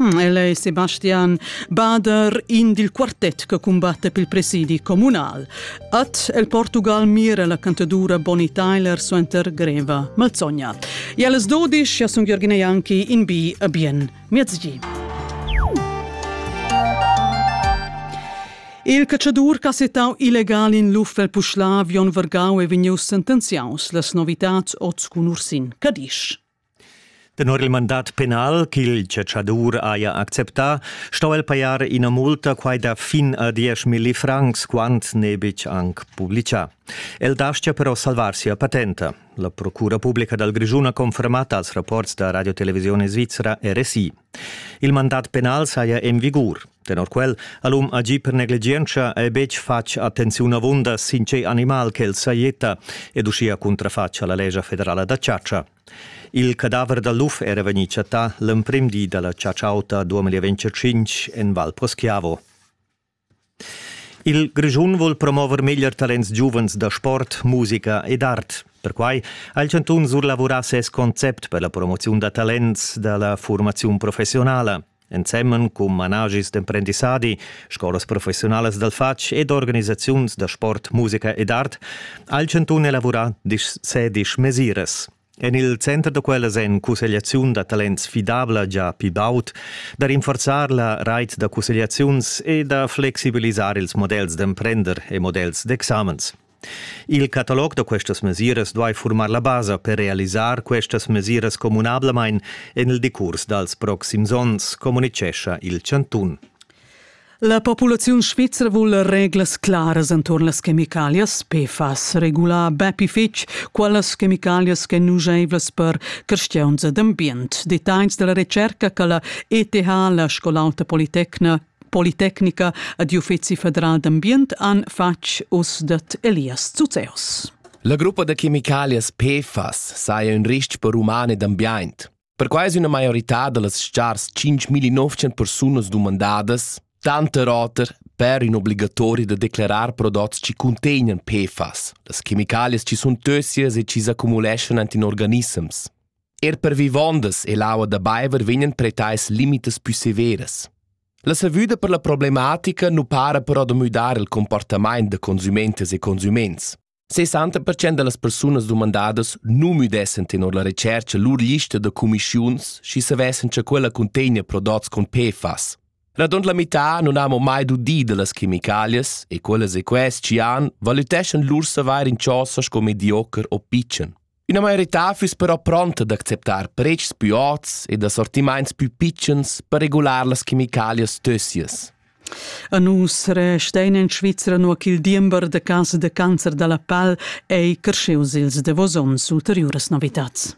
Hm, el è Sebastian Bader, in dil quartet che cumbatte pel presidi communal. At el Portugal mira la cantadura Bonnie Tyler suenter greva malzogna. E alles dodisch, ja sun Jürgen Janki in bi a bien miezgi. Il cacciadur che ha settau illegal in l'uffel Puschlav Jon Vergau è vegnius sentenziaus las novitats oz cun Ursin Cadisch. Tenor il mandat penal ch'il chatschadur haja acceptà, sto el pajar ina multa quai da fin a diesch milli francs, quant n'è betg anc publitgà. El dastia però salvar sia patenta. La Procura publica dal Grischun ha confermat als rapports da Radio Televisione Svizzera RSI. Il mandat penal saja en vigur. Tenor quel ha l'um agì per negligientscha e betg fatg attenziun avunda sin tgei animal ch'el sajetta ed uschia cuntrafatg alla lescha federala da chatscha. Il cadaver da luf era vegnì chattà l'emprim di dalla chatscha auta 2025 en Val Poschiavo. Il Grischun vuol promover meglier talents giuvens da sport, musica ed art. Perquai ha il Chantun surlavurà ses concept per la promoziun da talents da la furmaziun professionala. ensemen cun managis d'emprendissadi, scolas professiunalas dal fatg ed organisaziuns da sport, musica ed art ha il chantun elavurà sedisch mesiras. En il center da quellas en cussegliaziun da talents fidabla già pli baud, da rinforzar la rait da cussegliaziuns e da flexibilisar ils models d'emprender e models d'examens. Il catalog da questas mesiras duai furmar la basa per realisar questas mesiras communablamain en il decurs dals proxims onns, communitgescha il chantun. La populaziun svizra vul reglas claras enturn las chemicalias. PFAS regula bepi fitg quellas chemicalias ch'en nuscheivlas per creschiuns ed ambient. Detagls dalla retscherca che la ETH, la scol'alta politecna Politecnica ad Uffizi federal d'ambient han fatg uss dat Elias Zuzeos. La gruppa da chemicalias PFAS saja un rist per umane d'ambiente. Perquai è una maiorità da las stars 5.900 persunas dumandadas, tanta roter, per in obligatorio da declarar prodotti che contengono PFAS, las chemicalias che sono tossias e che s'accumulescono in organismes. Er per vivondas e l'aua da baiver vegnan pretais limitas pü severas. La savüda per la problematica nu para però da müdar il comportamaint da consumentas e consuments. 60% da las persunas dumandadas nu müdessen tenor la retschercha lur lista da cumischiuns, schi savessan cha quella cuntegna prodots con PFAS. Radund la mità non hamo mai dudi da las chemicalias e quelle seques ci han valüteschan lur savair in chosa sco mediocher o pitschen. Üna maiorità füss però pronta d'acceptar pretschs pü ots ed assortimaints pü pitschens per regular las chemicalias tössias. A nus restein in Svizra nua ch'il diember da cas da cancer da la pal ei cresceus ils davos onns ulteriuras novitats.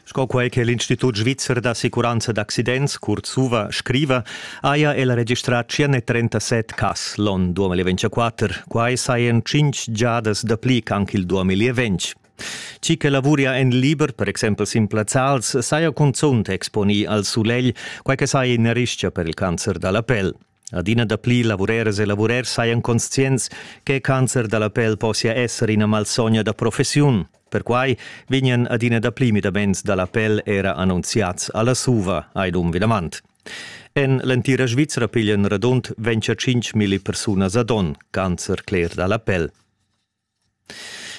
Sco quei che l'Institut svizzer d'assicuranza d'accidents, kurz SUVA, scriva, haja el registrà 137 cas l'on 2024. Quai sajan 5 giadas dapli ch'anc il 2020. Chi che lavuria en liber, per exempel sin plazzals, saja cunzunt exponì al sulegl, quai che saja ina rischia per il cancer da la pel. Adina dapli lavureras e lavurers sajan conscients che il cancer da la pel possia esser ina malsogna da professiun. Perquai vegnan adina dapli midaments da la pel era annunziads alla SUVA, Aidum Vidamant. En l'entira Svizra piglian radund 25.000 persunas ad onn cancer cler da la pel.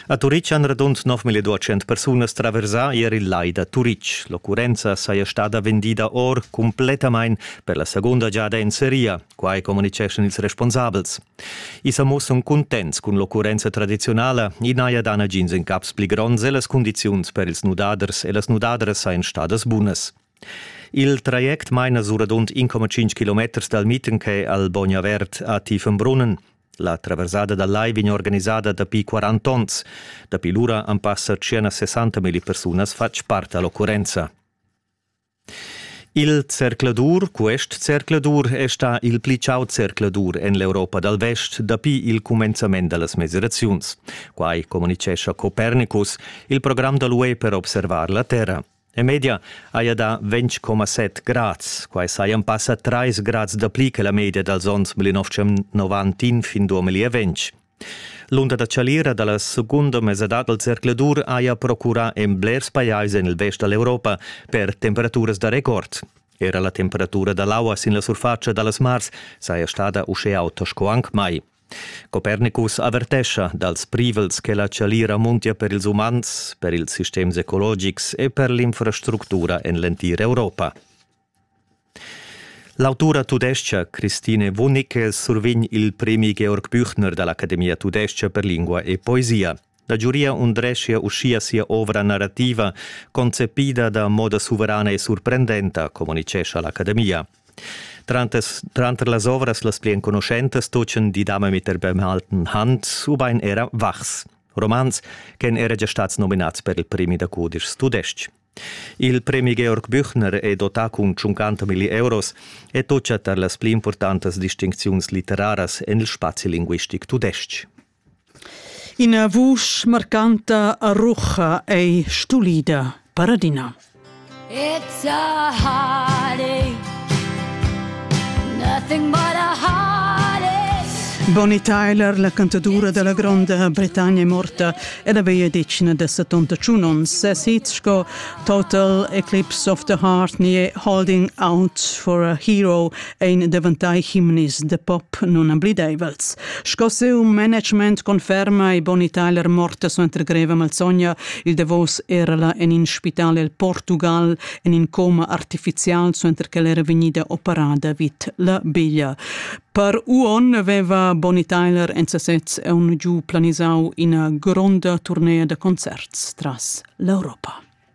A Turitg han radund 9200 persunas traversà ier il lai da Turitg. L'occurrenza saja stada vendida or cumplettamain per la segunda giada en seria, quai communitgeschan ils responsabels. I sa mussan cuntents cun l'occurrenza tradiziunala, i n'haja dà nagins incaps pli gronds e las cundiziuns per ils nudaders e las nudadras sajan stadas bunas. Il traject maina suradont 1,5 km dal Mietenke al Bognavert a Tiefenbrunnen. La traversada da lai vegn organisada dapi 40 onns. Dapi lura han passa circa 60.000 persunas fatg part all'occurrenza. Il zercladur, quest zercladur, è stà il pli chau zercladur en l'Europa dal Vest dapi il cumenzament da las mesiraziuns. Quai communitgescha Copernicus, il program da l'UE per observar la Terra. E media haja dà 20,7 grads. Quai sajan passa 3 grads dapli che la media dals onns 1990 fin 2020. L'unda da chalira da la segunda mesadad dal zercladur haja procurà en blers pajais en il vest da l'Europa per temperaturas da record. Era la temperatura da l'aua sin la surfatscha da las mars saja stada uschè auta sco anc mai. Copernicus avertescha dals privels che la chalira muntia per ils umans, per ils sistems ecologics e per l'infrastructura en l'entir Europa. L'autura tudestga Christine Wunnicke survegn il premi Georg Büchner da l'Academia tudestga per lingua e poesia. La giuria undreschia uschia sia ovra narrativa, concepida da moda suverana e surprendenta, communitgescha l'academia. Tranter, tranter las ovras las pli enconuschentas tutgan Die Dame mit der bemalten Hand ubain era Wachs, romans ch'èn era gia stads nominads per il premi da cudischs tudestg. Il premi Georg Büchner è dotà cun 50 milli euros e tutga tar las pli importantas distincziuns litteraras en il spazi linguistic tudestg. Ina vusch marcanta a rucha ei stulida, paradina. It's a heartache, nothing but a heartache. Bonnie Tyler, la cantadura della Gronda Britannia è morta ed aveva decina da 71 onns. Ses hit sco Total Eclipse of the Heart ni Holding Out for a Hero ein daventai himnis de pop nunamblideivels. Sco siu management conferma e Bonnie Tyler morta suenter greva malsogna, il davos erala en in spital el Portugal en in coma artificial suenter che era vegnida operada vid la biglia. Per Uon aveva Bonnie Tyler en sesez aun giu planisau ina gronda turnea da concerts tras l'Europa.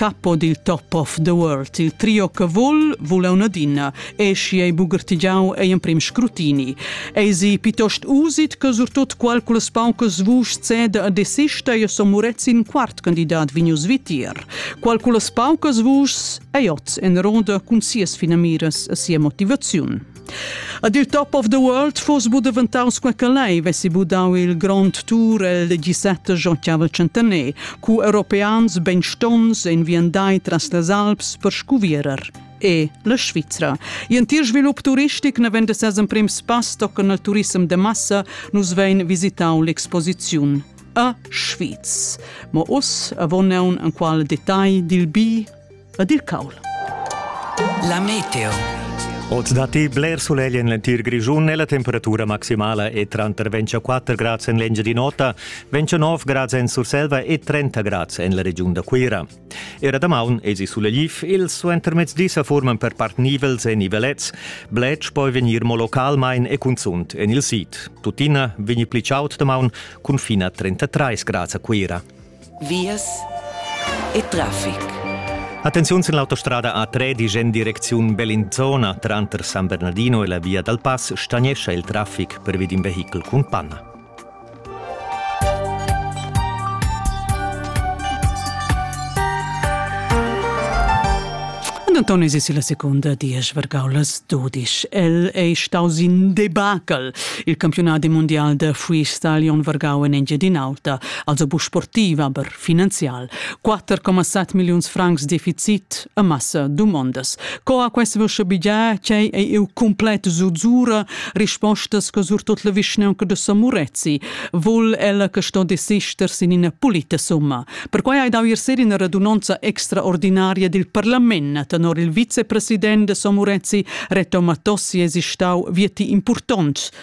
capo dil top of the world. Il trio che vul, vul un adina, e schi ei bugertigiau ei emprim scrutini. Ei si piuttost usit che surtut qualcunas paucas vuschs ceda a desista e so murezzi in quart candidat vegnius vitir. Qualcunas paucas vuschs ei oz en ronda cun sias finamiras e sia motivaziun. A dir top of the world fos bu daventaus quei che lei vessi bu dau il grond tour el 17 giocavel centener, cu europeans benstonns en viandai tras las Alps per scuvierer e la Svizra. In tir svilup turistic ne vende ses emprim spass tochen al turism de massa nus vein visitau l'exposiziun a Schwyz. Ma us avon neun en qual detagl dil bi ed il caul. La meteo. Oz datti bler sulegl en l'entir Grischun e la temperatura maximala è tranter 24 grads en l'Engiadin'Ota, 29 grads en Surselva e 30 grads en la regiun da Cuira. Era damaun esi sulegliv, ils suentermezdi sa forman per part nivels e nivelets, bletsch poi vegnir mo localmain e cunzunt en il sid. Tuttina vegni pli chaud damaun cun fina 33 grads a Cuira. vias e traffic. Attenziun sin l'autostrada A3 disch en direcziun Bellinzona. Tranter San Bernardino e la via dal pass stagnescha il traffic pervi d'in vehichel cun panna. Antoni si la secunda diesch vargau las dudisch. El ei staus in debacle. Il campionat mundial da freestyle on vargau en Engiadin'Alta also bu sportiv, aber finanzial. 4,7 milliuns francs deficit e massa domondas. Co ha quest vusche bigia che è il completo zuzzura rispostas che sur tot la vischnaunca de Samurezzi, vol ella che sto desister sin ina pulita summa. Perquai hai dau ier in radunanza extraordinaria del parlament tenor il vicepresident de Samurezzi Reto Matossi esistau vieti importants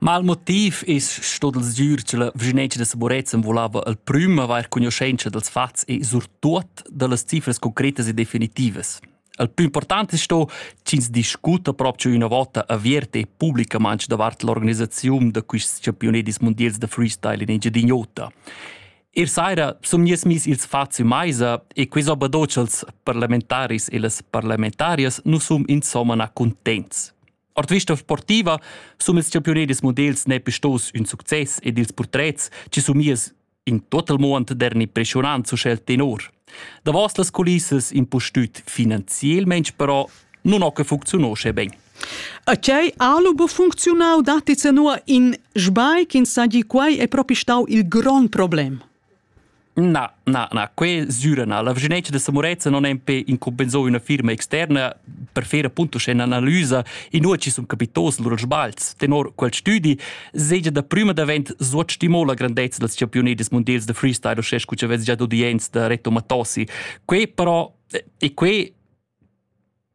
Mal motiv es stot il sgür cha la vischinanza da Saborezan volava al prüm avair cugnuschentscha dals fats e surtuot da las cifras concretas e definitivas. Il plü important es sto ch'ins discuta propcha üna vota avierta e publicamaing davart l'organisaziun da quists champiunedis mundials da freestyle in Engiadin'Ota. Ir saira sun gnüts miss ils fats in maisa e quis obadoch als parlamentaris e las parlamentarias nu sun insomma na cuntents. Ord vista sportiva sun ils champiunedis models nepe stos ün success ed ils purtrets chi sumias in total mond der impressionant su schel tenor. Davos las culissas impustüt finanzielmaing però nun ho che funcziunò sche ben. A chei alubo funcziunau datti senua in sbai ch'in sagli quai è propi stau il grond problem. Na, na, na, que süra na. La vischinanza da Samoreza non è impe incompensò üna firma externa per fer appunto sche analysa in uoci sun capitos lura sbalz. Tenor quel studi segia da prüma davent suot stimò la grandezza dels championetes mondials de freestyle o sche scu vez già d'udienz da Reto Matossi. Que però e que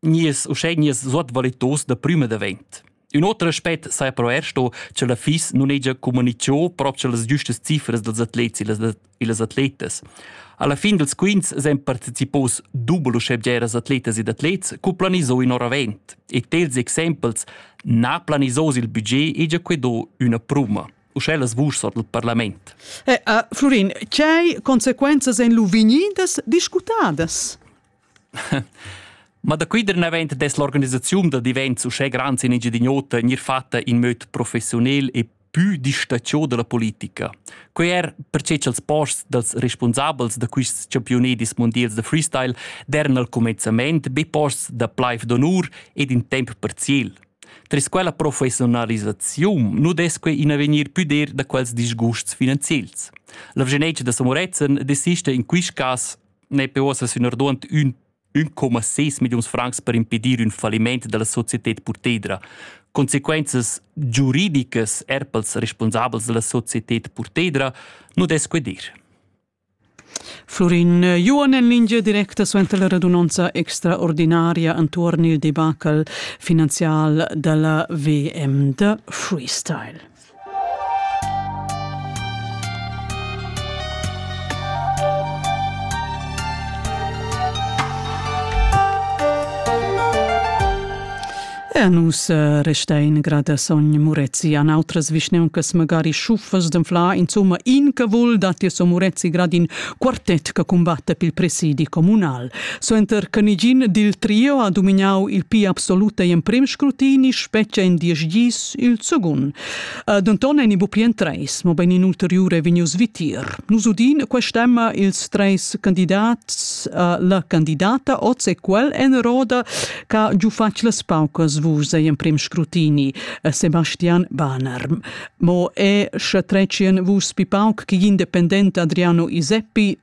nies uschè nies suot valitos da prüma davent. Un oter aspect saja però er sto che la FIS non hegia comunicio proprio las giustas cifras dels atlets e las atletas. Alla fin dels quints sen participos dubel uschebgeras atletas ed atlets cu planiso in oravent e tels exempels na planisos il budget hegia quedo una pruma. Uschè las vusch sot il parlament. Eh, uh, Florin, c'hai consequenzas en lu vegnidas discutadas? Ma da quei der naven dess l'organisaziun da divents uschè grands in Engiadin'Ota gnir fatta in möd professionel e pü distatgiò da la politica. Quei er perche cha'ls posts dals respunsabels da quists campiunedis mondials da freestyle dern al comenzament be posts da plaif d'onur ed in temp parziel. Tras quella professionalisaziun nu dess quei in avegnir pü dir da quels disgusts finanziels. La Vegenetsch da Samorezen desista in quist cas n'è uossa sunorduant ün 1,6 milliuns francs per impedir ün falliment della societed Purtedra. Consequenzas giuridicas er pels responsabels della societed Purtedra nu des dir. Florin Juon en lingia directa suenter la radunanza extraordinaria intorno il debacle finanzial della VM de Freestyle. E nus eh, resta in grada sogn Murezi an outras vischneuncas magari schuffas d'anfla, insomma, in che vul datti so Murezi grad in quartet che combatta pil presidi comunal. Suenter che nigin dil trio ha dominau il pi absolut e emprem scrutini, spetga in diesch gis Il secund. Uh, denton ein i buca en treis, mobein in ulteriur ei vegnius vitier. Nus udin quest'emma ils treis candidats, uh, la candidata oz e quel en roda che giu fac las paucas vus ei emprem scrutini, uh, Sebastian Banerm. Mo è sche trecien vus pi pauc che independent Adriano Iseppi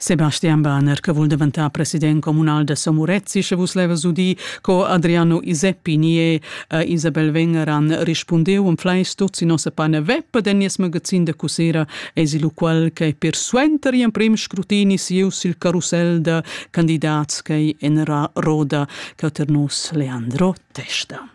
Sebastian Bahner che vul daventar president communal da Somorezzi, sche vus levas udir co Adriano Iseppi nie e Isabel Wenger han rispundeu en fleisch tuts in nossa pane web den nies magazin da cussera esi lu quel che per suenter in prim scrutini siu sil carusel da candidats che en ra roda che ter nus Leandro Testa.